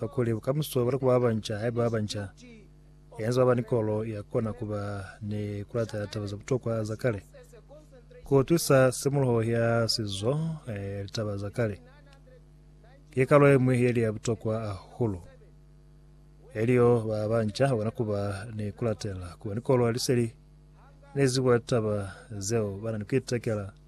Kakuli bukamuso bwa kuba banca haiba ba banca, yani za kuba ni kolo ya kona kuba ni kulata taba za butokwa za kale, kuutwisa simuloho ya sizo ni litaba za kale, ki kalo yemwi yeli ya butokwa ahulu. Elyo ba banca bakona kuba ni kulatela, kuba ni kolo ya liseli ni zibo ya litaba zeo bana ni kuitekela.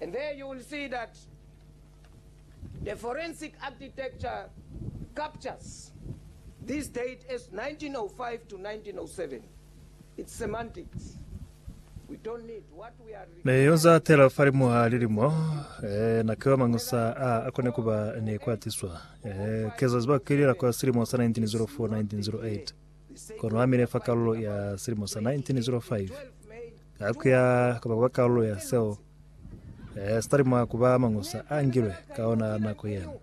And there you will see that the forensic architecture captures this date as 1905 to 1907. It's semantics. We don't need what we are Ne yo za tela falimu ha lilimo, eh, na kiwa mañi sa a a kone ku ba ne kwa tiswa. Eh, ke za ziba kilila kwa silimo sa 1904, 1908. Kono a mile fa kalulo ya silimo sa 1905. Ha ku ya ka ba ku ba kalulo ya seo, eh, si talima ku ba mañusa a ngilwe ka ona nako yeo.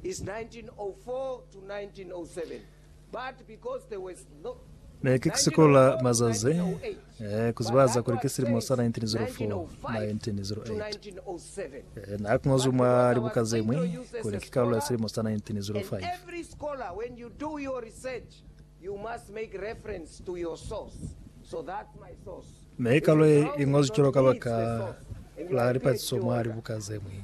Is 1904-1907 but because there was no Ne ki sikola mazazi eh, ku zibahaza kuli ki silimo sa 1904-1908. Eh, na ku ngozwi mwa libuka ze ñwi kuli ki kalulo ya silimo sa 1905. Mi kalulo ye i ngozwi cwalo ka baka la lipatiso mwa libuka ze ñwi.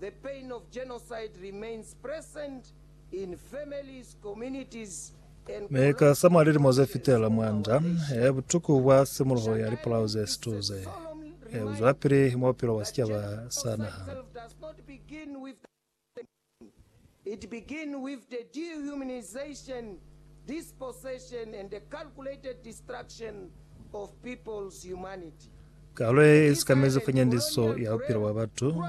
The pain of genocide remains present in families, communities and Mi ka za mwa lilimo ze fitela mwa nda ye butuku bwa simuluho ya lipolao ze situ ze, e uzwelapili mwa bupilo bwa sicaba sa naha. It begin with the dehumanization, dispossession and the calculated destruction of people's humanity. Kalo ye i sikamezi funyandiso ya bupilo bwa batu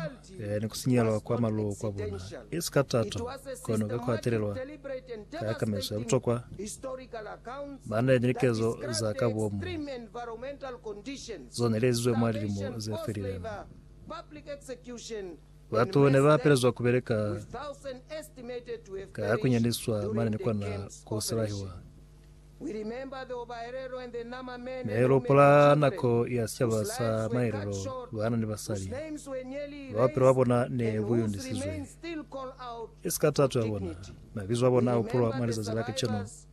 ni ku sinyelwa kwa maluko a bona. I si ka tato, kono ka ku hatelelwa ka kamezo ya butokwa, ba na ni likezo za ka bomu zo ne li ezizwe mwa lilimo ze felileng. Batu ne ba pelezwa ku beleka ka ku nyandiswa mane ni kona ku silahiwa. Ne lu hupula nako ya sicaba sa maelelo bana ni basali bao bupilo bwa bona ne bu yondisizwe. I si ka tato ya bona, mabizo a bona a hupulwa mwa lizazi la kacenu.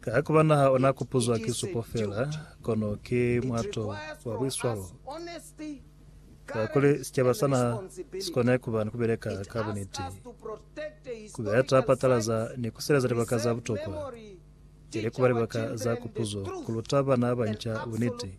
Ka ku ba naha ona kupuzwa ki supo fela, kono ki mwato wa buiswalo. Kakuli sicaba sa naha si kone kuba ni kubeleka ka buniti, kubeya ta patalaza ni kusileleza libaka za butokwa, ili kuba libaka za kupuzo, kuluta bana banca buniti.